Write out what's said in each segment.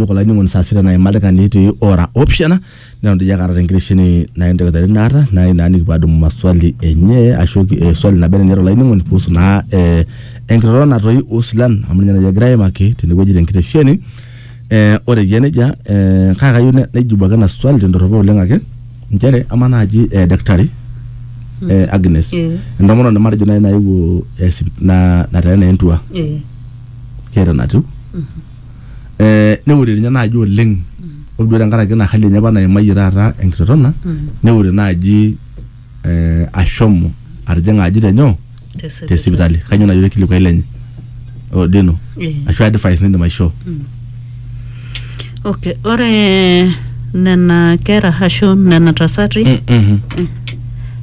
Iyiook olainining'oni saa sita naima oldaikani etii ora opishana neton doi ake aata te nkitesheni naen te nkitari naata nai naa nikipuo aadumu maswali enye ashu eh swali naba enaa eniata olainining'oni kuhusu naa eh enkiroroto natoi oo silan amu ninye naa egirai aimaki tene wueji te nkitesheni. Eh ore eyia nejia eh kake kayieu naijibu ake ena swali te ndoropo oleng ake nchere amaa naaji eh daktari eh Agnes Eh. entomononi matejo nai nayewuo eh sip naa nateena entua Eh. keeta enatiu eh, neure ninye naaji oleng ore duo tenkaraki ina hali enye apa naimayie taata enkitotona neure naaji eh, ashomo atijing'a aji tenyoo te sipitali kanyoo naaji orkilikuai lenye O Deno Eh. ashu advice nindim aishoo okay ore nena kera ashu nena tasati Mhm.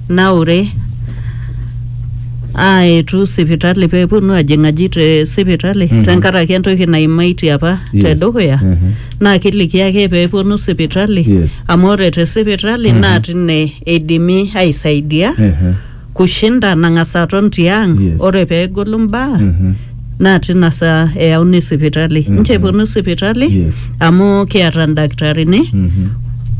naure aetu sipitali pee eponu ajing'aji te sipitali Mhm. tenkaraki entoki naimaitie apa Yes. te dukuya Mhm. naa kiliki ake pee eponu sipitali Yes. amu ore te sipitali naa tine eidimi aisaidia Ehe. kushinda nang'as aton tiang Yes. ore pee egolu mbaa Mhm. naa tina saa eyauni sipitali mm nche eponu sipitali Yes. amu kiata ildakitarini Mhm.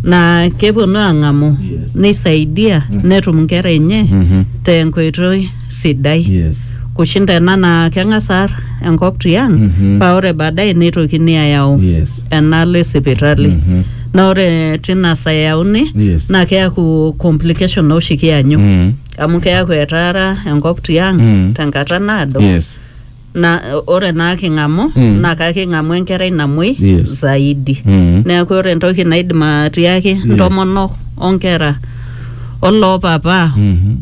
naa keponu aang'amu Yes. neisaidia netum nkera enye Mhm. tenkoitoi sidai Yes. kushinda ena naa keng'as aar enkop tiang Mhm. paa ore baadaye neitokini ayau Yes. enaalo esipitali Mhm. naa ore tina saa eyauni Yes. naa keaku complication oshi kianyu Mm. amu keaku etaara enkop tiang Mm. tenkata naado yes na ore naa king'amu Mm. naa kaking'amu enkerai namuoi Yes. zaidi Mm. neeku ore entoki naidim atiaki ntomonok onkera oloopapa Mhm.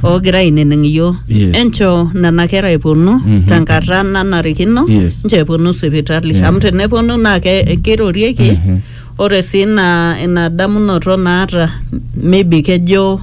oogira ainining iyioo Yes. enchoo nena kera eponu Mhm. tenkata nanarikino Yes. nchoo eponu sipitali amu teneponu naa ke- kirorieki Mhm. Ore sii ina ina damunoto naata maybe kejo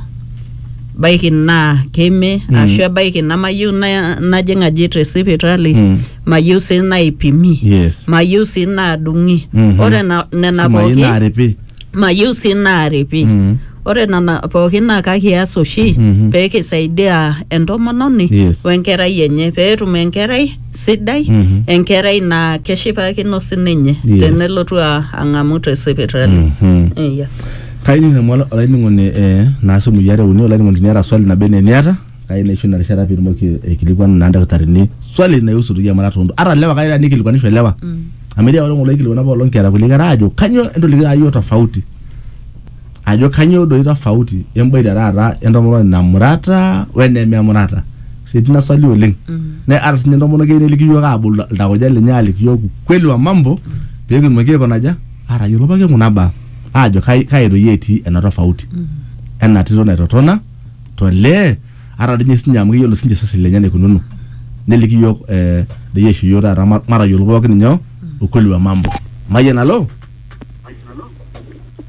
baiki naa keime Mm. ashu ebaiki namayieu na- najing aji te sipitali Mm. mayieu sii naipimi Yes. mayieu sii naadung'i Mhm. ore na- nena Shumai pooki naaripi. mayieu sii naaripi Mm. ore nena pooki naa kakias oshi Mhm. pee kisaidia entomononi Yes. wenkerai enye pee etum enkerai sidai Mhm. enkerai naa keshipakino sininye Yes. tenelotu a- ang'amu te sipitali Mhm. Iya. kai ning'amu ola- olainining'oni eh, naa simui are uni olainining'oni tiniata swali nabo ene niata kai naisho ina rishata piitumoki aikilikuanu naa ildakitarini swali naihusu doi emuratata ontoyie ata lewa kai taa nikilikuanisho lewa amu etii apailong oloikilikuana apailong kiata kulie kera aajo kanyoo entolikitio aayio tofauti ajo kanyoo doi tofauti emboita taata entomononi namurata wenememurata sitina swali oleng ne ata sinye entomononi keyieu neliki yiok abol iltauja lenye aliki yiok ukweli wa mambo pekitumoki aikonaja atayiolo pooki kuna baa ajo kai kai doi etii ena tofauti ena tito naitotona tolee ata dinye sinye amu keyiolo sinche iseseni lenye enaikununo neliki yiok eh, doi aisho yiok taata ma- matayiolo pookin inyoo ukweli wa mambo mayian alo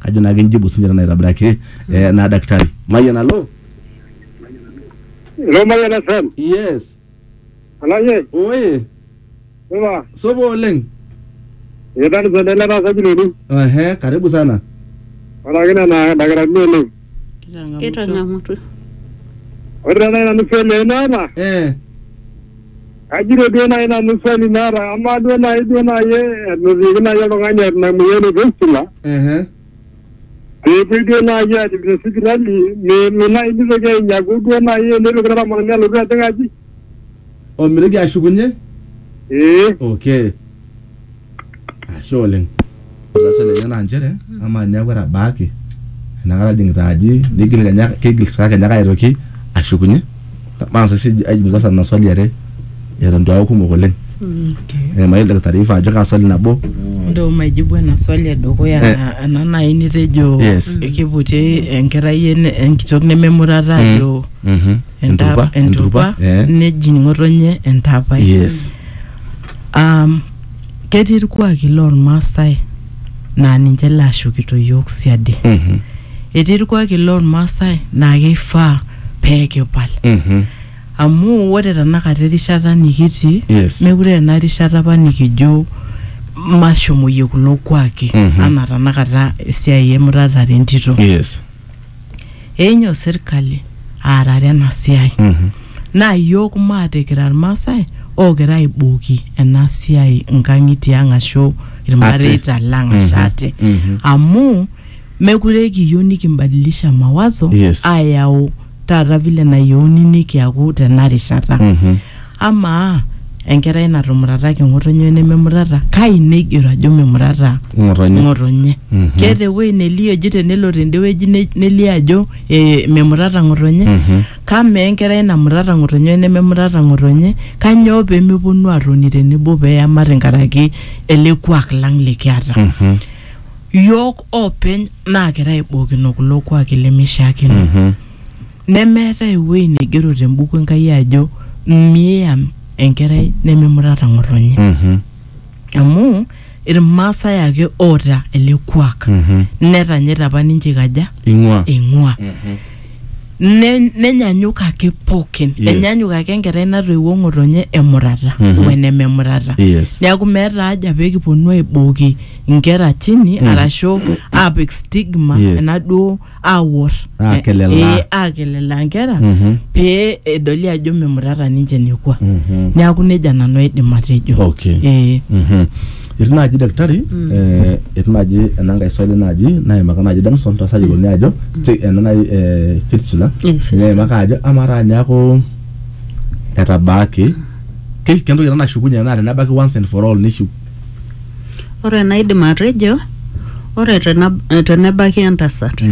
kajo naa kinjibu sinye tena aitobiraki eh, naa daktari mayian alo Lo Mayian FM. yes Olashe, oye supa. sopo oleng Etaa nisende ele taasa biloni. ehe karibu sana Oraki nena dakitarini oleng. Kitang'amutua. Ore taata nanu swali ai naata, eh Ajito duo naaji nanu swali naata amaa duo naaji duo naaji enotieki naaji oltung'ani eeta ina moyian e fistula Ehe. peepuoi duo naaji aajip te sipitali me- me naaji mitoki ainyaku duo naaji enetoki naramatani alotu ajing aji omitoki ashukunye ee okay Ashe oleng. Ore swali enye naa nchere amaa teniaku etabaaki enakata ajing'ita aji nigil kenya kigil saa kenya ake aitoki ashukunye? Mang'as sii sij aijum kwanza nena swali are eton itu aaku kumok oleng. Ee mayiolo oldakitarri oifaa ajo kaa swali nabo. Ndio maijibu ena swali edukuya Eh. ena nai nitejo Yes. kiputi enkerai en- enkitok nememurata ajo Mhm. enta- Enturpa, enturpa enturpa, eh. nejing ng'otonye entaapai. Yes. Um, ketii irkuaki lormaasai naa ninche laashukito yiok siadi Mhm. etii irkuaki lormaasai naa keifaa pee kipal Mhm. amu ore tanakata erishata nikitii Yes. mekure ena rishata apa nikijo mashomoyie kulo kuaki Mhm. anaa tanakata esiai emuratare entito Yes. enyo serkali aarare ena siai naa iyiook maate kira irmaasai ookira aibooki ena siai nkang'itie ang ashu irmareita lang ashu ate amu mekure kiyieu nikimbadilisha mawazo Yes. ayau taata vile nayieuni nikiaku tena rishata Amaa, enkerai natumurataki ng'otonye wenememurata, kai neigero ajo memurata Ng'otonye. ng'otonye? Keeta ewueji nelio eji tenelo tende wueji ne- nelio ajo eh, memurata ng'otonye? Kamaa enkerai namurata ng'otonye wenememurata ng'otonye, kanyoo pemeponu atoni tenebo peyamat nkaraki ele kuak lang likiata? Yook openy naakira aibookino kulo kuaki lemeishiakino. Nemeetae ewueji naigero te mbuku Enkai ajo miam enkerai nemimurata ng'otonye. Amu Ilmaasai ake oota ele kuak. Netanyaita apa ninche eikaja? Ing'ua. Eing'ua. Ne- Nenyanyuk ake pookin. Yes. Enyanyuk ake enkerai natoiwuo ng'otonye emurata o enememurata. Yes. Neaku meeta haja pee kiponu aibooki inkera chini arashu aapik stigma Yes. enaduo awor Aakelelaa. Eh, aakelelaa nkera Mhm. pee edoli ajo memutata ninche nekua Mhm. neaku nejia nanu aidim atejo Okay. Eh, Mhm. etii naaji daktari eh, etii naaji ena nkae swali naaji naimaka naaji danson tasayiloni ajo sti- ena naaji eh, fistula Eh, fistula. naimaka ajo amaa taa niaku etabaaki ke- kentoki ena nashukunye naa tenebaki once and for all nishu Ore enaidim atejo, ore tena- tenebaki entasat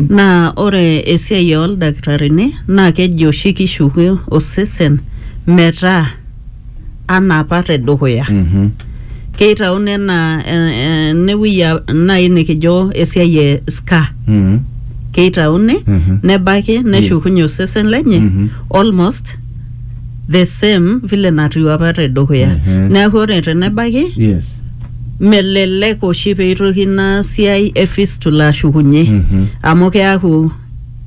naa ore esiai ooldakitarini naa keji oshi kishuku osesen metaa anaa apa tedukuya. Keitauni enaa eh, eh, enewuei a- nai nikijo esiai e scar. Keitauni nebaki neshukunye osesen lenye almost the same vile natiu apa te dukuya Mhm. neeku ore tenebaiki yes melelek oshi peitoki ina siai e fistula ashukunye Mhm. amu keaku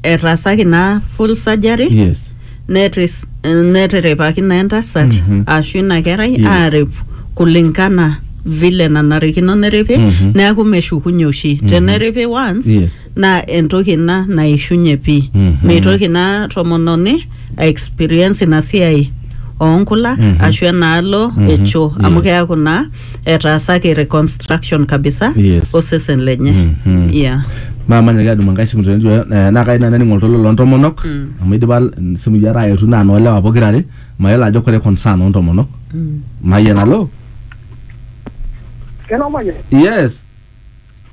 etaasaki naa full surgery yes netis- netiripaki naa entasat Mhm. ashu ina kerai Yes. aarip kulingana vile nanarikino neripi Mhm. neeku meshukunye oshi teneripi once yes naa entoki ina naishunye pii Mhm. meitoki ina tomononi a experience ina siai oonkulak Mhm. ashu enaalo Mhm. e choo amu Yes. keaku naa etaasaki reconstruction kabisa Yes. osesen lenye Mhm. yeah. maa manyaki adumu enkae simu tene eh, naa kai nanu aning oltoilo loontomonok Mm. amu idipa mm, simui are aetu naa noolewa pokira are mayiolo ajo kore concern oontomonok Mm. mayian alo Hello, Manya. yes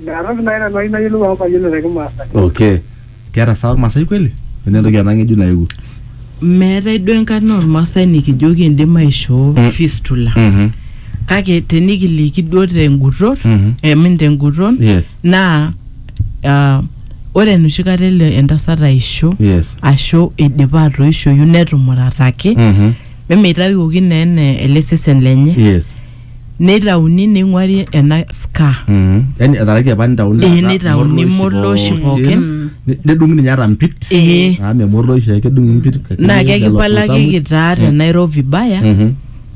Meeta nai nanu ayieu nayiolou amu mayiolo te Kimaasai. okay keeta saa ormasai kweli ene entoki ena ng'ejuk naewuo meetae duo enkarna ormasai nikijo kindim aishoo Mm. fistula Mhm. kake tenikiliki duo tenguton Mhm. emin tenguton yes naa ah, ore enoshi kata elo entasat aisho yes ashu eidipa atoishoyu netumurataki Mhm. mimitawuoki naa ene ele sesen lenye yes neitauni neing'uari ena ska Mm. Yaani etaraki apa nitauni Eh, nitauni morloshi pookin. Ni- nedung'i ninye ata mpit Eh. Ah, me morloshi ake edung'i mpit kake naa lelo kekipalakiki tutamu. taa te Nairobi baya Mhm.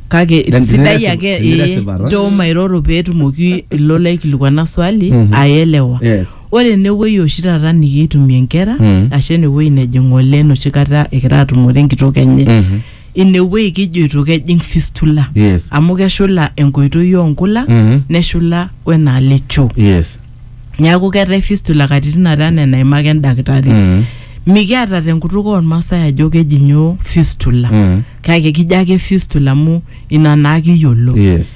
kake Then sidai tiniresi- ake eh, tiniresipa, ta? nchoo mairoro peetumoki ilo laikilikuana swali Mhm. aelewa Yes. ore enewueji oshi taata nikiitumie nkera Mhm. ashu enewueji nejing ng'ole enoshi kata egira atumore enkitok enye Mhm. inewuei kijoito kejing fistula Yes. amu keshula enkoitoi oonkula Mhm. neshula wenaalo echoo yes neeku keetae fistula katitin are anaa enaimaka endakitari Mhm. mikiata tenkutuk oormaasai ajo keji nyoo fistula Mhm. kake kijo ake fistula amu ina naa kiyiolo yes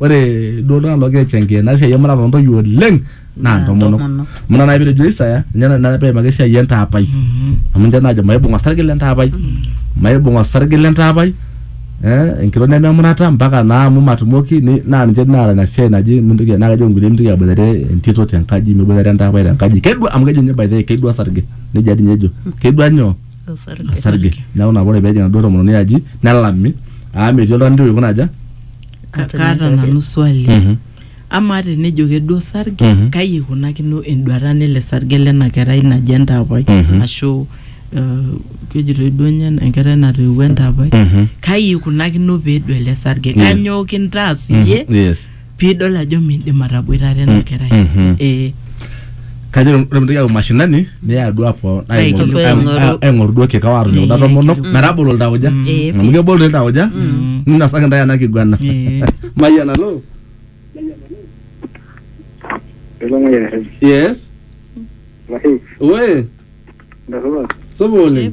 ore duo iltung'anak loogira aichangia ena siai emuratare ontoyie oleng naa ntomonok ntomonok. amu ina naaji pitejo Isaya ninye na- naaji peimaki esiai entaapai amu ninche naajo maibung osarge lentaapai maibung osarge lentaapai eh, enkitok nememurata mpaka naa amu matumoki ni- naa ninche naata ina siai naji mintoki naa kejo inkulie mintoki aboitare entito tenkaji miboitare entaapai tenkaji kedua amu kejo ninye by the way kedua osarge nejia dii ninye ejo kedua nyoo osarge osarge neeku nabo ore peejing enaduo tomononi aji nelami amu metii oltung'ani ntoki aikuna aja Ka- Atonyorraki. kaata nanu swali Mhm. amaa tenejo keduo osarge Mhm. kai eikunakino enduata nele sarge lena kerai naji entaapai Mhm. ashu eh, kejitoi duo nye enkerai natoiwuo entaapai Mhm. kai eikunakino peedu ele sarge Mhm. kanyoo kintaas iyie Mhm. yes piidol ajo miindim ataboitare ena kerai mhm. ee kajo ore mintoki ayau mashinani niya duo apo aing'oru duo kikao aatoni kuna tomonok metabolo iltauja amu kebol doi iltauja mm. ninasaki intae ena kiguana mayian alo yes we supa oleng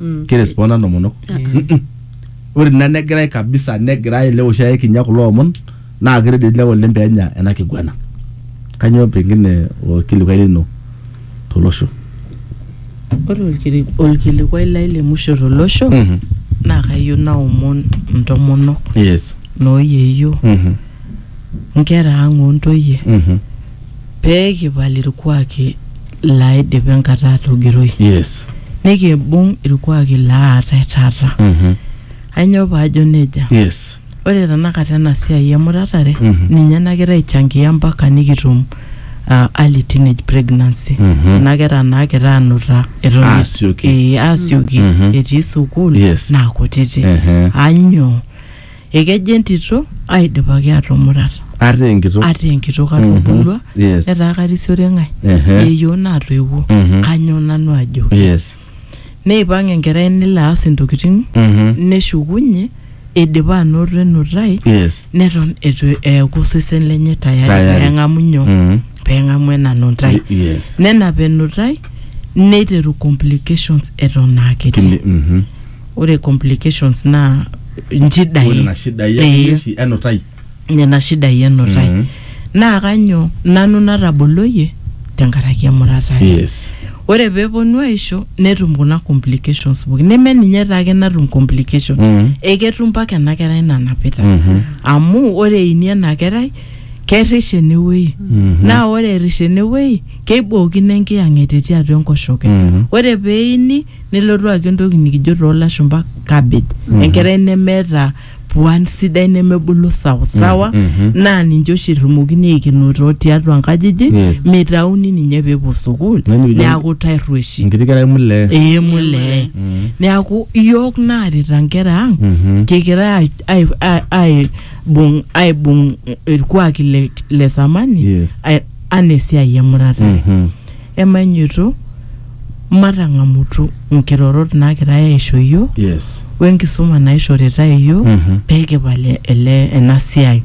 Mm. kiresponda ntomonok Mm-mm. ore ina negirai kabisa negirai ele oshi aikinya kulo omon naa kiredit lewa oleng peenya ena kiguana kanyoo pengine orkilikuai lino tolosho Ore olkili- olkilikuai lai le musho tolosho Mhm. naa kayieu naomon intomonok yes nooyeyio Mhm. nkera ang' o ntoyie Mhm. pee kipal ilkuaaki laaidipa enkata aatogiroi Yes. nikimbung' ilkuaaki laatai taata. Mhm. Ainyoo paajo neja? Yes. Ore tenakata ena siai emuratare Mhm. ninye nagira aichangia mpaka nikitum ah, early teenage pregnancy. Mhm. Kuna kera naagira aanuta eton eitu- Aasioki. eh, aasioki Mhm. etii sukuul Yes. naa kutiti. Ehe. Ainyoo? ekejo entito aidipaki atumurat ata enkitok ata enkitok atubulua yes. etaa karisiore ng'ae Ehe. yeyioo natoiwuo Mhm. kanyoo nanu ajoki yes neipang enkerai nelo aas intokitin Mhm. neshukunye eidipa anoto enutai yes neton etu eeku osesen lenye Tayari. tayari peng'amu nyoo Mhm. peng'amu ena nutai Y- yes nenap enutai neiteru complications eton aa kiti Kili- mhm. ore complications naa ore nchidai nena shidai Eh, akeyie oshi enutai nena shidai enutai Mhm. naa kanyo nanu nataboloyie tenkaraki emurata ai. yes ore peeponu aisho netum kuna complications pooki neme ninye taake natum complication Mhm. eketum mpaka ena kerai nanapita Mhm. amu ore eini ena kerai kerish enewuei Mhm. naa ore erish enewuei keibookino enkiyang'et etii atua enkoshoke Mhm. ore peini Nelotu ake entoki nikijo too lashumpa cabbage enkerai nemeeta puan sidai nemebulu sawasawa naa ninche oshi irrumokini aikenoo too tiatua nkajijik Yes. meitauni ninye peepuo sukuul Yaani ijo- neaku tarrueshi enkiti kerai mulee ee mulee neaku iyiook naarita nkera ang Mhm. kikira ai- ai- ai- aibung aibung irkuaki le, le samani Yes. ai- anaa esiai emurata Mhm. emanyoto matang'amutu nkirorot naagirai aaisho iyiook yes wenkisuma naishoritae iyiook Mhm. pee kipal ele ena siai.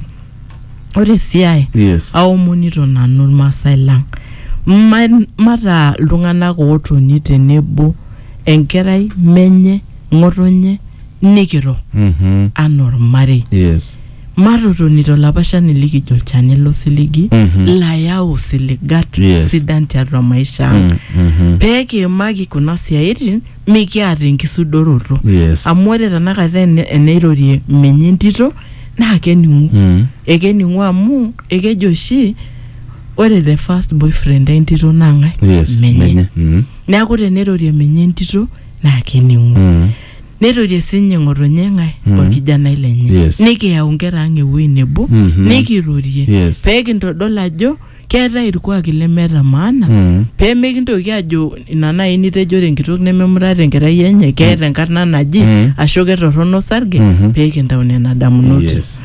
Ore sii ae yes aomonito nanu Irmaasai lang ma- mataa iltung'anak ootoni tenebo enkerai, menye, ng'otonye nikiro Mhm. anaa ormarei. yes Matotoni to lapashani likijo olchani lo siligi layau isiligat Yes. sidan tiatua maisha ang. Pee kiimaki kuna siaitin mikiata enkisudoroto. Yes. Amu ore tenakata ene- eneirorie menye entito naa kening'u. Mm. Ekening'u amu ekejo oshi ore the first boyfriend entito naa ng'ae? Yes. Menye. Mm. Neaku teneirorie menye entito naa kening'u. Mm. Neirorie sinye ng'otonye ng'ae olkijanai lenye. Yes. Nikiyau nkera ang ewuei nebo, Mhm. nikirorie, Yes. pee kintodol ajo keetae ilkuaaki lemeeta maana, Mm. pee mikintoki ajo ina naaji nitejo ore enkitok nememurata enkerai enye, keeta enkarna naji, Mm. ashu ketorrono osarge, Mhm. pee kintau nena damunot. Yes.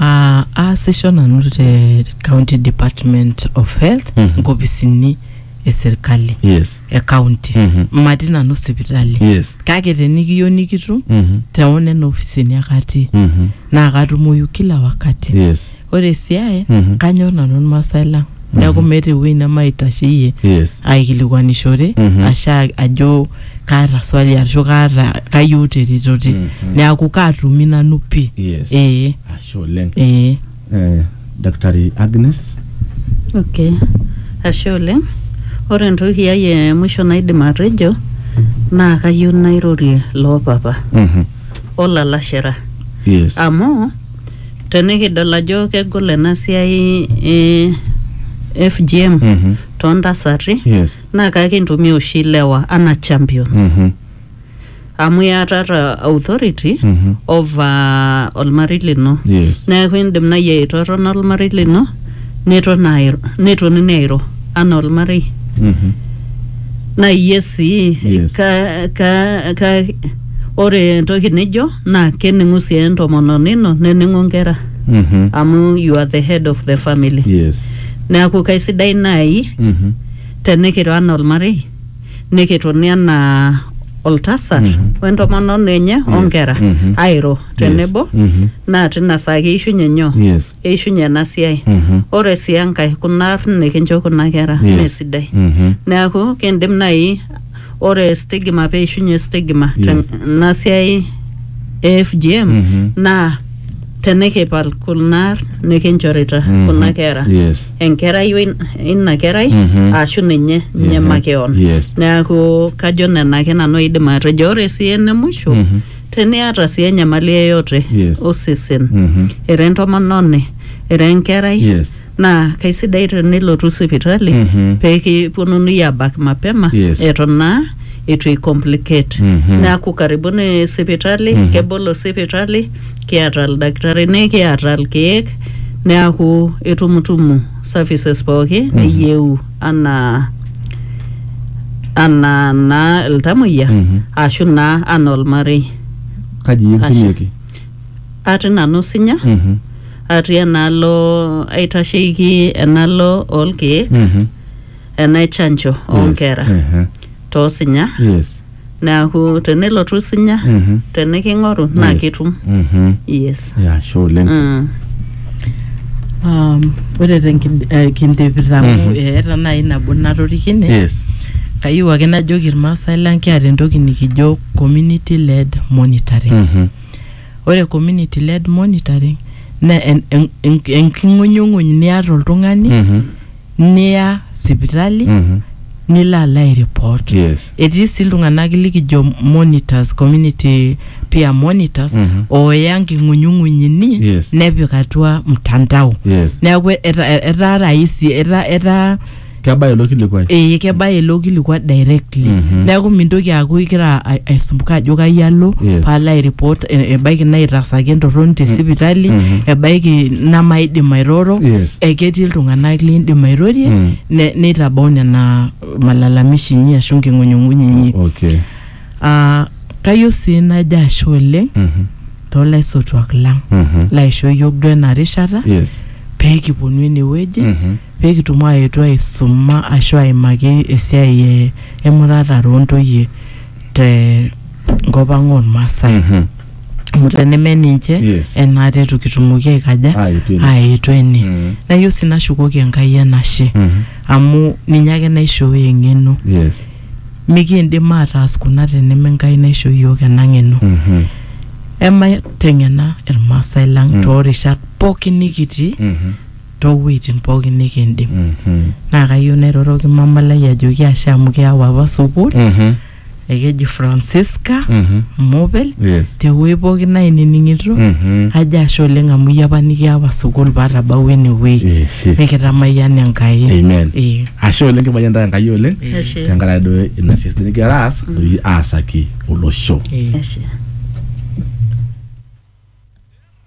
Ah, aasisho nanu te county department of health Mhm. nkopisini e serkali yes e county Mhm. matii nanu sipitali yes kake tenikiyieu nikitum Mhm. teo nena ofisini ake atii Mhm. naa katumoyu kila wakati yes ore esiai Mhm. kanyor nanu irmaasai lang neeku meeta ewueji nemaitasheyie yes aikilikuanishore Mhm. asha ajo kaata swali ashu kaata kayieu teretote Mm, mm. neaku kaatumi nanu pii Yes. ee Ashe oleng. ee Eh, Daktari Agnes. Okay. Ashe oleng. Ore entoki ai e mwisho naidim atejo naa kayieu nairorie loo papa Mhm. olalashera Yes. amu tenikidol ajo kegol ena siai e FGM Mhm. toontasati Yes. naa kakintumia oshi ilewa anaa champions Mhm. amu iatata authority Mhm. over olmarei lino Yes. neeku indim nai aitotona olmarei lino neton airo netonini airo anaa olmarei Mhm. naa iyie sii Yes. ka, ka, ka, ore entoki nijo naa kening'u sii entomononi ino nening'u nkera Mhm. amu you are the head of the family Yes. neeku kaisidai nai Mhm. tenikiro anaa olmarei nikitoni anaa oltasat Mhm. wentomononi enye Yes. onkera Mhm. airo tenebo Mhm. naa tina saa keishunye nyoo Yes. eishunye ena siai Mhm. ore sii enkae kuna arn nikincho kuna kera Yes. mesidai Mhm. neaku kindim nai ore stigma peishunye stigma Yes. tena siai e FGM Mhm. naa tenikipal kuna nikinchorita Mhm. kuna kera Yes. enkerai we- ina kerai Mhm. ashu ninye ninye Ehe. makeon Yes. neaku kajo nena ake nanu aidim atejo ore sii ene musho Mhm. teniata sii enyamali yeyote Yes. osesen Mhm. ira entomononi ira enkerai Yes. naa kaisidai tenilotu sipitali Mhm. pee kiponunui aabak mapema Yes. eton naa eitu icomplicate Mhm. neaku karibuni sipitali Mhm. kebolo sipitali kiata ildakitarini kiata ilkeek neaku itumutumu services pooki niyieu anaa anaa naa iltamoyia Mhm. ashu naa anaa olmarei kaji Ashe. kitumieki atii nanu sinya Mhm. atii enaalo aitasheiki enaalo oolkeek Mhm. enaichanjo Yes. oonkera Ehe. toosinya Yes. neaku tenelotu sinya Mhm. teniking'oru naa Yes. kitum Mhm. yes Ya, ashe oleng. Mm. Um, ore tenkindipita amu Mhm. eeta naaji nabo natorikine Yes. kayieu ake najoki irmaasai lang kiata entoki nikijo community led monitoring Mhm. Ore community led monitoring naa en- en- en- enking'unyung'uny niata oltung'ani Mhm. niya sipitali Mhm. nilo alo airipot. Yes. Etii sii iltung'anak likijo monitors, community peer monitors Mhm. ooya nking'unyung'uny inyi Yes. nepik atua mtandao. Yes. Neeku eta- etaa rahisi etaa etaa Kebaya ilo kilikuai. ee kebaya ilo kilikua directly Mhm. neeku mintoki aaku igira a- aisumbuka ajo kai alo Yes. paalo airipot e- ebaiki naitasaki entorroni te sipitali Mhm. ebaiki namaidim airoro Yes. eketii iltung'anak liindim airorie Mm. ne- neitabau nena malalamishi inyi ashu nking'unyung'unyi inyi Okay. Ah, kayieu sii najo ashe oleng Mhm. toolaisotuak lang Mhm. laishoo yiok duo ena rishata Yes. pee kiponu enewueji Mhm. pekitum aetu aisuma ashu aimaki esiai e emuratare ontoyie te nkop ang ormaasai Mhm. amu teneme ninche Yes. enaata etu kitumoki aikaja Aetu ene. aetu ene Mhm. nayieu sii nashukoki enkai enashe Mhm. amu ninye ake naishooyo eng'eno Yes. mikiindim ataas kuna teneme enkai naisho yiok ena ng'eno Mhm. emateng'ena irmaasai lang Mm. toorishat pookin nikitii Mhm. too wueitin pookin nikindim. Naa kayieu nairoroki mama lai ajoki ashe amu kiyau apa sukuul. Mhm. Ekeji Francisca Mhm. Mobel Yes. te wuei pookin nainining'ito Mhm. ajo ashe oleng amu iyie apa nikiawa sukuul paatabawua ene wuei Yes. nikitamayian Enkai. Amen. Ee. Ashe oleng kimayian taa Enkai oleng Ashe. tenkaraki duo ina siai sidai nikigira aas aasaki olosho. Ee. Ashe.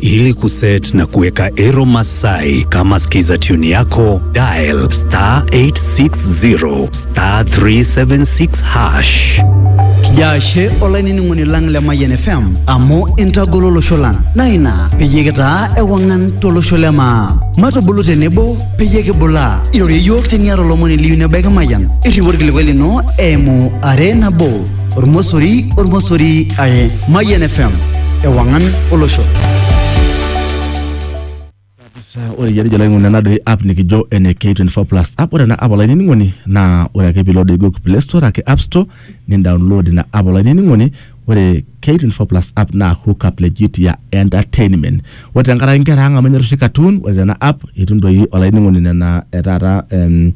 Ili kuset na kuweka Ero Masai kama skiza tune yako, dial star 860 star 376 hash. Kijaashe olainining'oni lang le Mayian FM amu intagolo olosho lang naa ina peyie kitaa ewang'an tolosho le maa. Matubulu tenebo peyie kibulaa. Irorie iyiook teniata olomoni liyu nebaiki Mayian. Irriu orkilikuai lino eimu are nabo ormosori ormosori are mayian fm ewang'an olosho Sasa ore iyiarija olainining'oni ena doi app nikijo ene K24 plus app ore ena app olainining'oni naa ore ake piilo doi Google Play Store ake App Store nindownload ina app olainining'oni ore K24 plus app naa hook up legit ya entertainment ore tenkaraki inkera ang amu enyor oshi cartoon ore tena app itum doi olainining'oni nena e taata em,